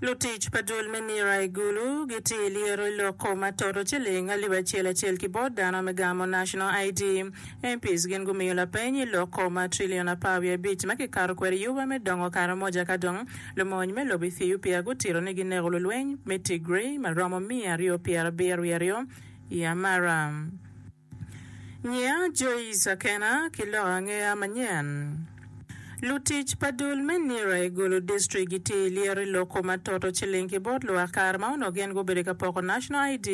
Lutic pa Dul me Nira i Gulu gitye i lyero i loko ma toto ciling alip acel acel ki bot dano me gamo National ID. MPs gin gumiyo lapeny i loko ma trillion apar wiye abic ma kikato kwede yuba me dongo Karamoja ka dong lumony me lobo Ethiopia gutito ni gineko lulweny me Tigray ma romo miya aryo pyera abiro wiye aryo i Amara. Ngiya Joice Akena ki lok angeya manyen. Lutic pa dul me nira i Gulu District gitye i lyero i loko ma toto ciling ki bot lwak kare ma onongo gin gubedo ka poko National ID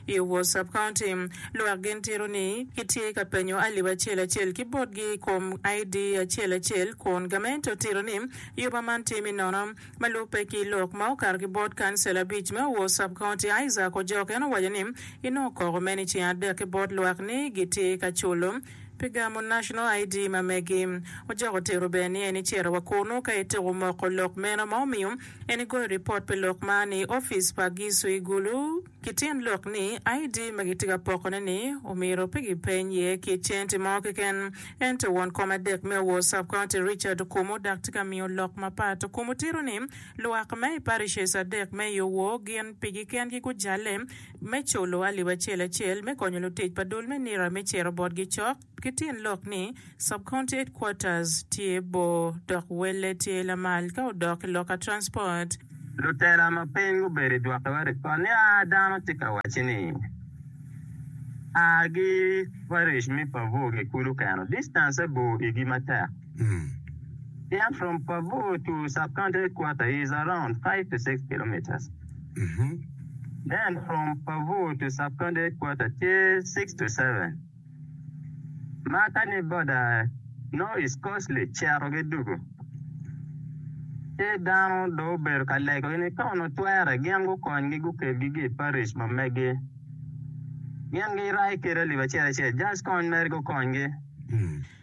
i Owor Sub-County. Lwak gin tito ni kitye ka penyo alip acel acel ki botgi i kom ID acel acel kun gamente otito ni yuba man tye me nono. Ma lubbe ki lok ma okato ki bot kancil abic me Owor Sub County, Isaac Ojok, en owaco ni inongo koko meno i ceng adek ki bot lwak ni gitye ka culo pi gamo National ID ma megi. Ojok otito bene ni en icito wa kunu ka ituko moko lok meno ma omiyo en igoyo ripot pi lok man i opic pa Gisu i Gulu. Ki tyen lok ni, ID ma gitye ka pokone-ni omyero pe gipeny iye ki centi mo keken. Ento won kom adek me Owor Sub-county Richard Okumu dak tye ka miyo lok mapat. Okumu tito ni, Lwak me i parishes adek me i Owor gin pigi kengi gujalle me culo alip acel acel me konyo lutic pa dul me nira me ciro botgi cok, Ki tyen lok ni, Sub-County Headquarters tye bor dok welle tye lamal ka odok ki loka transport. Lutela ma piny gubedo i dwokiwa ripot niya, Dano tye ka wacci ni, A gi Parish me Pavoo ki kulu keno. Distance-e bor igi matek. Pien from Pavoo to Sub-County Headquarters is around five to six kilometres. Then from Pavoo to Sub-County Headquarters tye six to seven. Ma ka ni boda nongo East Coast li cito gi dugu, ci dano dong obedo ka lego gi ni ka onongo twere gin gukony gi gukeb gi gi i Parish ma megi. Gin gi rai kede lib acel acel just kony mere gukony gi.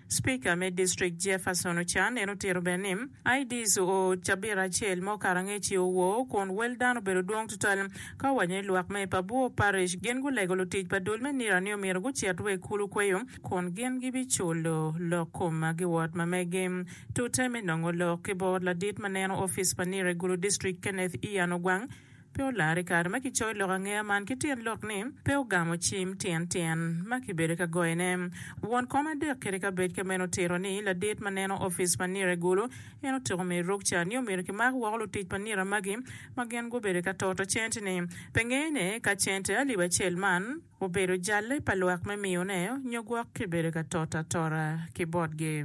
Speaker me district Jefferson Ochan en otito bene ni IDs oo cabit acel ma okato angec-ci owoo kun wel dano obedo dwong tutwal ka owaco ni lwak me Pabuo Parish gin gulego lutic pa dul me nira ni omyero gucit wa i kulu kweyo kun gin gibiculo lok kom giwot ma megi tute me nongo lok ki bot ladit ma neno opic pa nira i Gulu district Kenneth Ian Ogwang Pe olar i kare ma kicoyo lok angeya man ki tyen lok ni pe ogamo cim tyen tyen ma kibedo ka goyone. Won kom adek kede ka bec ka meno otito ni ladit ma neno opic pa nira i gulu en otyeko miyo ruk cat ni omyero kimak woko lutic pa nira magi ma gin gubedo ka toto cente ni pe ngeyone ka cente alip acel man obedo jalle pa lwak me miyone nyo gwok kibedo ka toto atora ki botgi.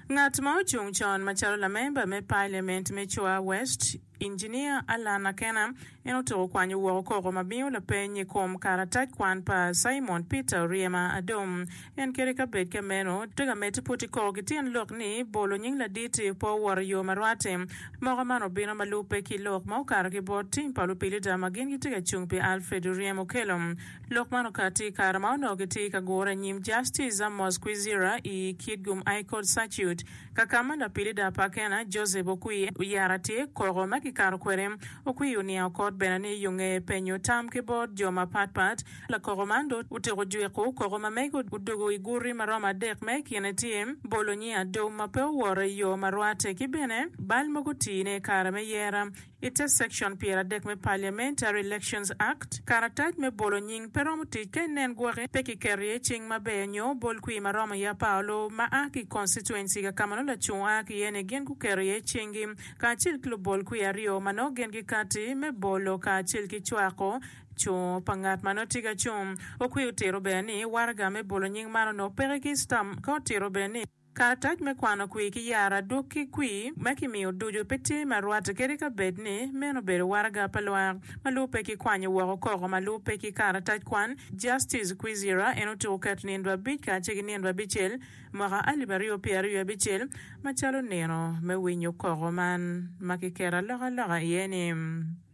Ngat ma ocung con macalo lamemba me Paliament me Chua West, Injinia Allan Akena, en otuko kwanyo woko koko ma miyo lapeny i kom karatac kwan pa Simon Peter Oryema Adom. En kede ka bed ka meno, tweg amedde puti koko ki tyen lok ni bolo nying ladit pe owoto i yo ma rwatte. Moko man obino ma lubbe ki lok ma okato ki bot tim pa lupilida ma gin gitye ka cung pi Alfred Oryem Okello. Lok man okati i kare ma onongo kitye i ka gure anyim Justice Amos Kwizera i Kitgum High Court Circuit, ka ka ma lapilida pa Akena, Joseph Okwi, oyara tye koko ma kikato kwede. Okwi oniango kot bene ni yunge penyo tam ki bot jo mapat pat. Lakoko man dong otyeko jwiko koko ma mege odugo i guti ma romo adek ma i kine tye, bolo nying adum ma pe owoto i yo ma rwatte ki bene bal mogo tii ne i kare me yera. I te Section Pyeradek me Parliamentary Elections Act, karatac me bolo nying pe romo tic ka inen gwoki pe kiketo iye cing maber nyo bol kwir ma romo iye apar olubu ma a ki i constituency ka ma nongo lacung a ki iye-ni gin guketo iye cinggi kacel ki lubol kwir aryo ma nongo gin gikati me bolo kacel ki cwako cung pa ngat ma nongo tye ka cung. Okwi otito bene ni waraga me bolo nying man onongo peke ki stamp ka otito bene ni Karatac me kwano kwir ki yaro adwogi ki kwir ma kimiyo ducu pe tye ma rwatte kadi ka bed ni meno obedo waraga pa lwak ma lubbe ki kwanyo woko koko ma lubbe ki karatac kwan. Justice Kwizera en otyeko keto nino abic kacel ki nino abicel mwaka alip aryo pyera aryo abicel macalo nino me winyo koko man ma kiketo alokaloka iye ni.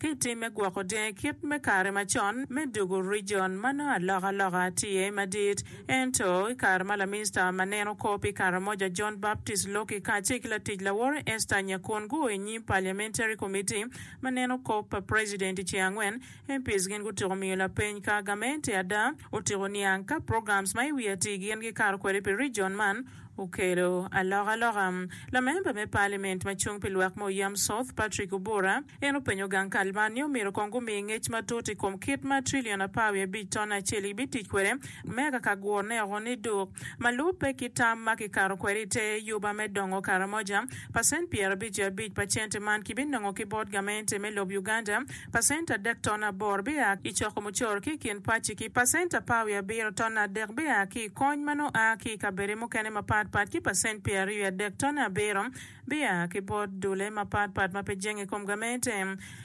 Ki tim me gwoko dyangi kit me kare macon me dugo rijon ma nongo alokaloka tye iye madit. Ento, i kare ma laminista ma neno kor pi Karamoja John Baptist Loki kacel ki latic laworo Esther Nyakun guo i nyim Parliamentary Committee ma neno kop pa president i ceng angwen, MPs gin gutyeko miyo lapeny ka gamente ada. Otyeko niang ka programs ma i wi atir gin gikato kwede pi rijon man. Okelo alokaloka. Lamemba me Paliament ma cung pi lwak me Oyam South, Patrick Obura, en openyo gang kal man ni omyero kong gumi ngec matut i kom kit ma trilion apar wiye abic ton acel gibitic kwede me akaka gurone oko ni duk, ma lubbe ki tam ma kikato kwede i te yuba me dongo Karamoja, pacent pyero abic wiye abic pa cente man kibinongo ki bot gamente me lob Uganda. Pacent adek ton aboro bia ki i coko mucoro ki i kin pacci, ki pacent apar wiye abiro ton adek bia ki i kony ma nongo a ki i kabedde mukene mapat pat, ki pacent pyeraryo wiye adek ton abiro bia ki bot dulle mapat pat ma pe jenge i kom gamente.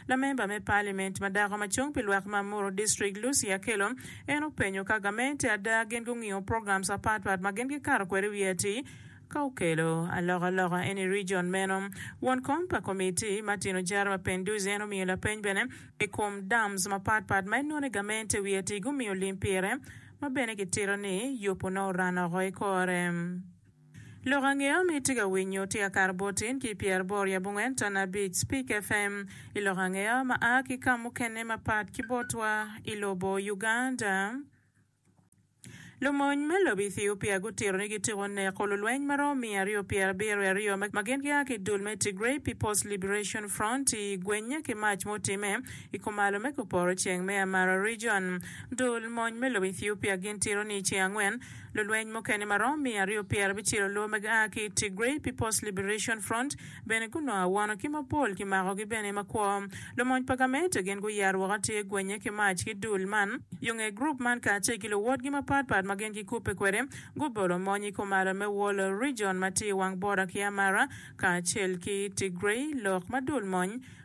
Lamemba me paliment ma dako ma cung pi lwak ma Muru District, Lucy Akello, en openyo ka gamente ada gin gungiyo programs apat pat ma gin gikato kwede i wiye atir, Ka okelo alokaloka eni i region meno, won kom pa Komiti ma Tino Jara ma Penduzzi en omiyo lapeny bene i kom dams mapat pat ma en nongo ni gamente wiye atir gumiyo lim pire ma bene kitito ni yupu nongo oran oko i kore. Lok ange omi itye ka winyo tye ka kato bot in ki pyer aboro i abongwen ton abic Speak FM i lok ange ma aa ki ka mukene mapat ki botwa i lobo Uganda. Lumony me lobo Ethiopia gutito ni gityeko neko lulweny ma romo miya aryo pyer abiro i aryo ma gin gia ki dul me Tigray People's Liberation Front i gwenye ki mac mutime i kumalo me kuporo ceng me Amara Region. Dul mony me lobo Ethiopia gin tito ni i ceng angwen, lulweny mukene ma romo miya aryo pyer abicel oloo ma gia ki i Tigray People's Liberation Front Bene gunongo awono ki mapol kimakogi bene makwo. Lumony pa gamente gin guyero woko atir gwenye ki mac ki dul man. Yo nge gurup man kacel ki luwotgi mapat pat ma gin gikubbe kwede gubolo mony i Kumara me Wollo Region ma tye i wang bota ki Amara kacel ki Tigray lok ma dul mony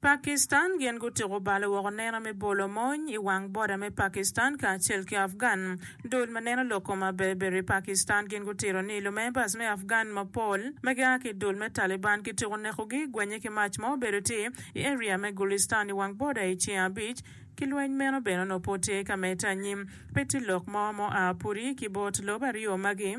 Pakistan gin gutuko bal woko neno me bolo mony i wang boda me Pakistan kacel ki Afgan. Dul ma neno lok kom aberber i Pakistan gin gutiro ni lumembas me Afgan mapol ma gia ki dul me Taliban kituko nekogi gwenye ki mac ma obedo tye i area me Gulistan i wang boda i ceng abic ki lweny meno bene onongo pud tye ka medde anyim. Pe tye lok mo ma oa pudi ki bot lobo aryo magi.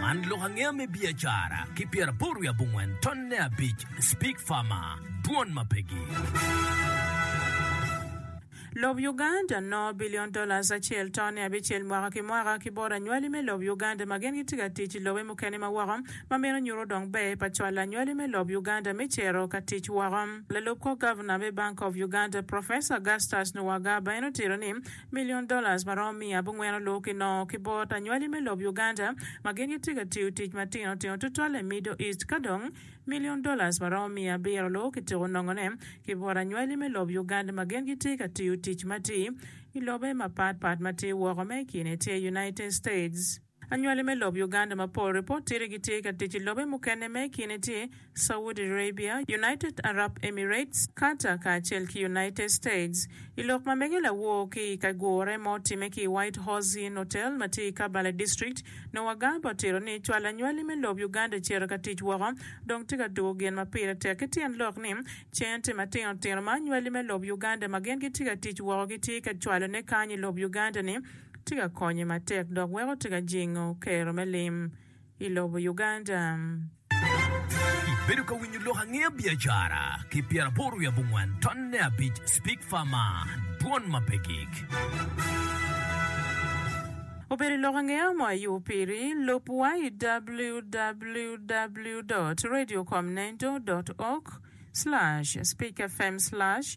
Man lok angeya me biacara ki pyeraboro wiye abongwen tonne abic Speak Farmer, Dwon ma Pegi. Lob Uganda no bilion dollars acel tonne abicel mwaka ki mwaka ki bot anywali me lob Uganda ma gin gitye ka tic i lobe mukene ma woko ma meno nyuto dong ber pa cwalo anywali me lob Uganda me cito ka tic woko. Lalub kor gavna me Bank of Uganda, Professor Augustus Nuwagaba en otito ni, Million dollars ma romo miya abongwen olur ki nongo ki bot anywali me lob Uganda ma gin gitye ka tiyo tic matino tino tutwalle i Middle East ka dong Million dollars ma romo miya abiro olur ki tyeko nongo ne ki bot anywali me lob Uganda ma gin gitye ka tiyo tic matir i lobe mapat pat matye woko me ikine tye United States. Anywali me lob Uganda mapol ripot tye ni gitye ka tic i lobe mukene ma i kine tye Saudi Arabia, United Arab Emirates, Qatar kacel ki United States. I lok ma mege lawor ki i kagure ma otimme ki i White Horse Inn Hotel ma tye i Kabbala District, Noah Garba otito ni cwalo anywali me lob Uganda cito ka tic woko dong tye ka dwogo gin ma pire tek ki tyen lok ni cente matino tino ma anywali me lob Uganda ma gin gitye ka tic woko gitye ka cwalone kany i lob Uganda ni tye ka konye matek dok weko tye ka jingo kero me lim i lobo Uganda. Ibedo ka winyo lok angeya biacara ki pyeraboro wiye abongwen ton ne abic speak far man dwon ma pe gig. Obedo i lok angeya mo ayu piri lub wa i www dot radio com nendo dot org slash speak fm slash.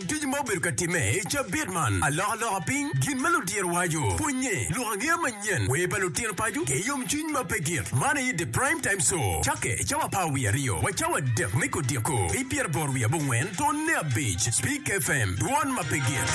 Ducu ma obedo ka timme i cabit man, alokaloka piny, gin ma ludiro waco, pwonye, lok angeya manyen, wer pa lutino paco, ki yomcwiny ma pe git. Man aye The Prime Time Show. Cakke i cawa apar wiye aryo wa cawa adek me kodiko, ki pyeraboro wiye abongwen tonne abic, Spik FM, dwon ma pe git.